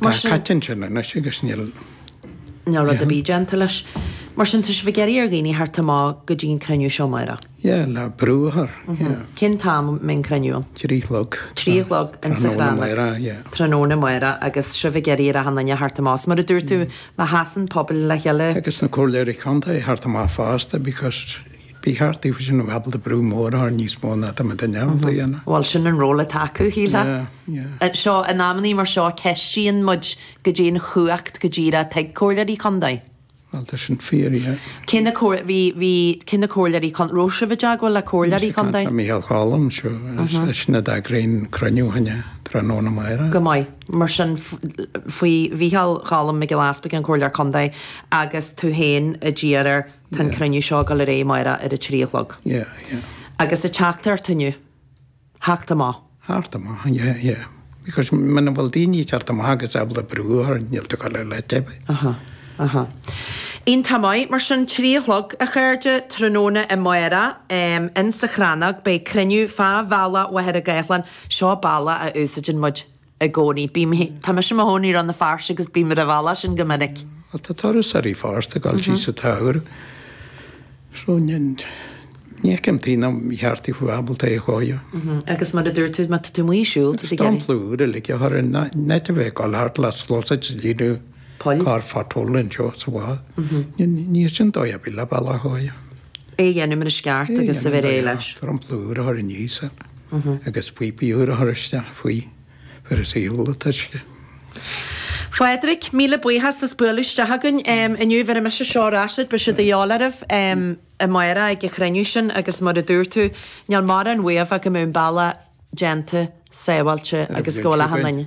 Mar Tá sin. caite ansin anois agus níl. Níl rud ar bith déanta leis. Mar sin, tá sibh ag iarraidh ar dhaoine a theacht amach go dtí an cruinniú seo amárach. Yeah, le brú a chur. Yeah. Cén t-am a mbeidh an cruinniú ann? Trí chlog. Trí chlog insa Tráthnóna Chrannóg. Amárach, yeah. Tráthnóna amárach agus sibh ag iarraidh ar achan duine a theacht amach. Is mar a dúirt tú, má sheasann pobal le chéile. Agus na comhairleoirí contae a theacht amach fosta because, Bhí thart faoi sin ábalta brú mór a chur orthu níos mó ná tá mé de neamhaird a dhéanamh. Bhuel, sin an ról atá acu, shílfeá. So, in amannaí mar seo, ceistíonn muid goidé an chumhacht go díreach atá ag Comhairleoirí Contae. Bhuel, tá sin fíor, yeah. Cé na Comhairleoirí Contae? An raibh sibh i dteagmháil le Comhairleoirí Contae? Tá, Micheál Choilm, seo, eisean a d'eagraigh an cruinniú fá choinne tráthnóna amárach. Go maith. Mar sin, faoi Mhicheál Choilm Mac Giolla Easpaig, an Comhairleoir Contae, agus tú féin a d'iarr air. Tá an cruinniú seo ag dul ar aghaidh amárach ar a trí a chlog. Yeah, yeah. Agus an teachtaireacht inniu. Theacht amach. Theacht amach, yeah, yeah. Because muna bhfuil daoine ag teacht amach agus ábalta brú a chur orthu, níl tú go le le teibh. Aha, aha. Iontach maith, mar sin, trí a chlog, a chairde, tráthnóna amárach, em, insa Chrannóg, beidh cruinniú fá bhealach Mhachaire Gathlán, seo bealach a úsáideann muid, i gcónaí. Bím, tá mise i mo chónaí i Rann na Feirste agus bím ar an bhealach sin go minic. Bhuel, tá turasóirí ar fad ag dul síos sa tsamhradh. So, ní fheicim tuige nár cheart daofa a bheith ábalta é a chóiriú. Agus mar a dúirt tú, má tá tú amuigh ag siúl, tú ag iarraidh. dromchla úr uilig a chur air in áit a bheith ag dul thart le sluasaid ag líonadh. Poll? Carr phatrúil anseo is thall. Níl sin dóigh ar bith le bealach a thógáil. É a dhéanamh mar is ceart agus a bheith réidh leis. Dromchla úr a chur aníos air agus píopaí úra a chur isteach faoi, fir is eol an t-uisce. Phádraic, Míle buíochas as bualadh isteach againn inniu. Bheir mise seo ar ais duit, beidh siad a dhíobháil oraibh amárach ag an chruinniú sin agus mar a dúirt tú, níl mórán uaibh ach go mbeadh an bealach. déanta, sábháilte agus go bhfuil achan duine.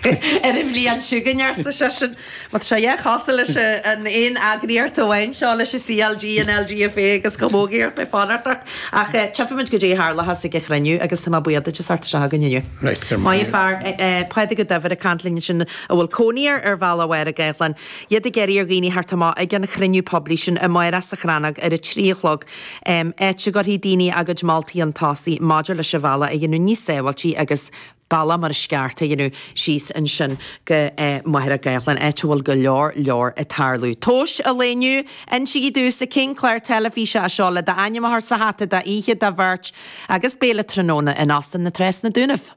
Ar a bhliain chugainn, arsa seisean. Má tá sé dhá chasadh leis an aon eagraíocht amháin seo, leis an CLG, an LGFA agus Camógaí, iarracht mé fanacht ort. Ach tchífidh muid goidé a tharlas ag an chruinniú agus tá mé buíoch duit as bheith anseo againn inniu. Raight go maith. Maith an fear. Pádraig Ó Duibhir ag caint linn ansin a bhfuil cónaí air ar bhealach Mhachaire Gathlán. Iad ag iarraidh ar dhaoine a theacht amach ag an chruinniú poiblí sin amárach sa Chrannóg ar a trí a chlog. áit a gcuirfidh daoine a gcuid moltaí chun tosaigh maidir leis an bhealach a dhéanamh níos sábháilte agus bealach mar is ceart a dhéanamh síos ansin go Machaire Gathlán, áit a bhfuil go leor, leor ag tarlú. Tomhas an lae inniu, insígí domhsa cén clár teilifíse é seo le d'ainm a chur sa hata, dhá oíche do bheirt agus béile tráthnóna in Óstán na Trá sna Dúnaibh.